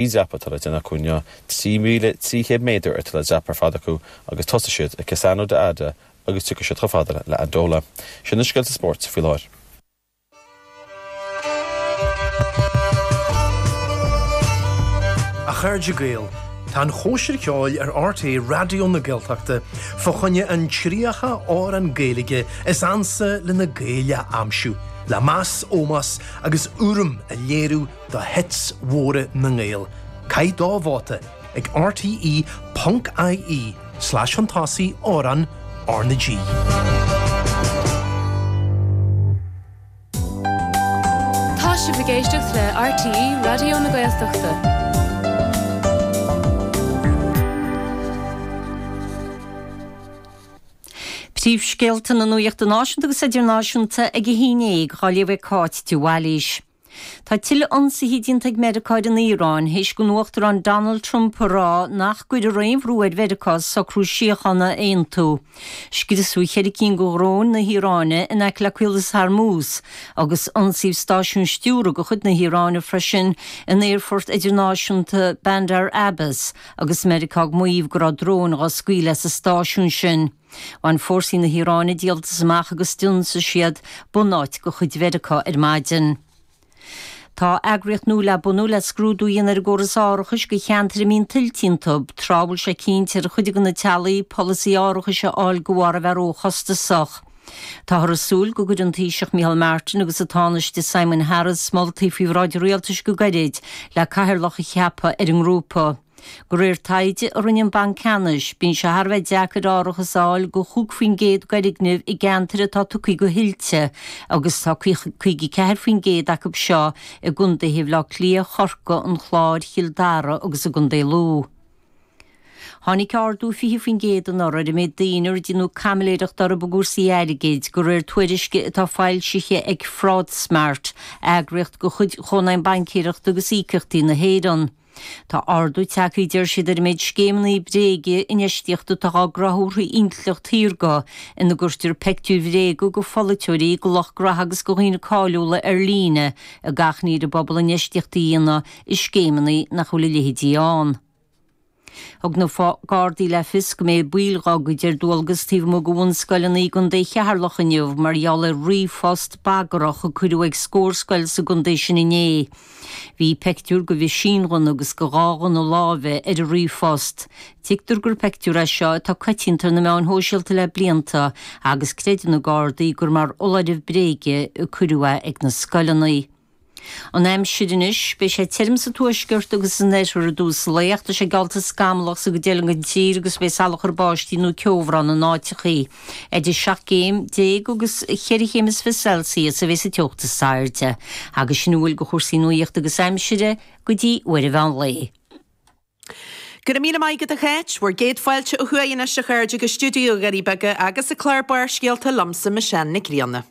Dreapadh tuilleadh déanta acu inniu, 3,300 méadar de thuilleadh dreapadh ar fad acu agus thosaigh siad ag Cassano d'Adda agus tiocfaidh siad chomh fada le Andalo. Sin na scéalta spóirt faoi láthair. A Chairde Gael, tá an chóisir ceoil ar RTÉ Raidió na Gaeltachta fá choinne an 30 amhrán Gaeilge is ansa leis na Gaeil a aimsiú, le meas, ómós agus urraim a léiriú, do hits mhóra na nGael, caith do vóta, ag rte, ponc ie slais chun tosaigh, Amhráin R na G. Tá sibh ag éisteacht le RTÉ Raidió na Gaeltachta. Príomhscéalta na nuachta náisiúnta agus idirnáisiúnta ag a 11 dhaoibh ag Cáit de Bhailís. Tá tuilleadh ionsaithe déanta ag Meiriceá ar an Iaráin théis don Uachtarán Donald Trump a rá nach gcuirfear aon bhrú ar Mheiriceá socrú síochána a aontú. Scriosadh ceithre cinn de dhróin na hIaráine in aice le Caolas Hormuz agus ionsaíodh stáisiún stiúradh de chuid na hIaráine freisin in aerfort idirnáisiúnta Bandar Abbas agus Meiriceá ag maíomh go raibh dróin dhá scaoileadh as an stáisiún sin. Bhain fórsaí na hIaráine díoltas amach agus d'ionsaigh siad bunáit de chuid Mheiriceá ar maidin. Tá eagraíocht nua le bunú le scrúdú a dhéanamh ar an gcóras árachais do cheantair a mbíonn tuilte iontu, tráth a bhfuil sé cinnte ar chuid de na teaghlaigh polasaí árachais a fháil de bharr é a bheith róchostasach. Táthar ag súil go gcuirfidh an Taoiseach Micheál Martin agus an Tánaiste Simon Harris moltaí faoi bhráid an Rialtais go gairid, le cathaoirleach a cheapadh ar an ngrúpa. De réir taighde a rinne an Banc Ceannais, bíonn sé thar a bheith deacair árachas a fháil do chúig faoin gcéad d'fhoirgnimh i gceantair atá tugtha do thuilte agus tá 54 faoin gcéad acu seo i gcondaetha Bhaile Átha Cliath, Chorcaí, an Chláir, Chill Dara agus i gCondae Lú. Tháinig ardú 20 faoin gcéad anuraidh ar an méid daoine ar déanadh caimiléireacht orthu i gcúrsaí airgid, de réir tuairisce atá foilsithe ag FraudSmart, eagraíocht de chuid Chónaidhm Baincéireachta agus Íocaíochtaí na hÉireann. Tá ardú tagtha, a deir siad, ar an méid scéimeanna bréige infheistíochta atá dhá gcruthú ar intleacht shaorga ina gcuirtear peictiúir bhréige de pholaiteoirí, de lucht gnaithe agus de dhaoine cáiliúla ar líne ag tathaint ar an bpobal infheistíocht a dhéanamh i scéimeanna nach bhfuil a leithéidí ann. Thug na Gardaí le fios go mbeidh baill dá gcuid ar dualgas taobh amuigh de bhunscoileanna i gContae Cheatharlach inniu mar gheall ar ríomhphost bagrach a cuireadh ag scór scoil sa gcontae sin inné. Bhí peictiúr go mheaisínghunna agus go dhá ghunna láimhe ar an ríomhphost. Tuigtear gur peictiúr é seo atá coitianta ar na meáin shóisialta le blianta agus creideann na Gardaí gur mar fholáireamh bréige a cuireadh é ag na scoileanna. An aimsir anois, beidh sé tirim sa tuaisceart agus san oirthear i dtús lae ach tá sé geallta scamallach sa gcuid eile gon tír agus beidh salachar báistí nó ceobhrán in áiteachaí. Idir seacht gcéim déag agus cheithre chéim is fiche Celsius a bheas an teocht is airde, agus sin a bhfuil go chúrsaí nuaíochta agus aimsire, go dtí uair an mheán lae. Go raibh míle maith agat a Cháit. Bhur gcéad fáilte ó thuaidh anois, a chairde, go stiúideo Dhoirí Beaga agus an clár Barrscéalta liomsa, Michelle Nic Grianna.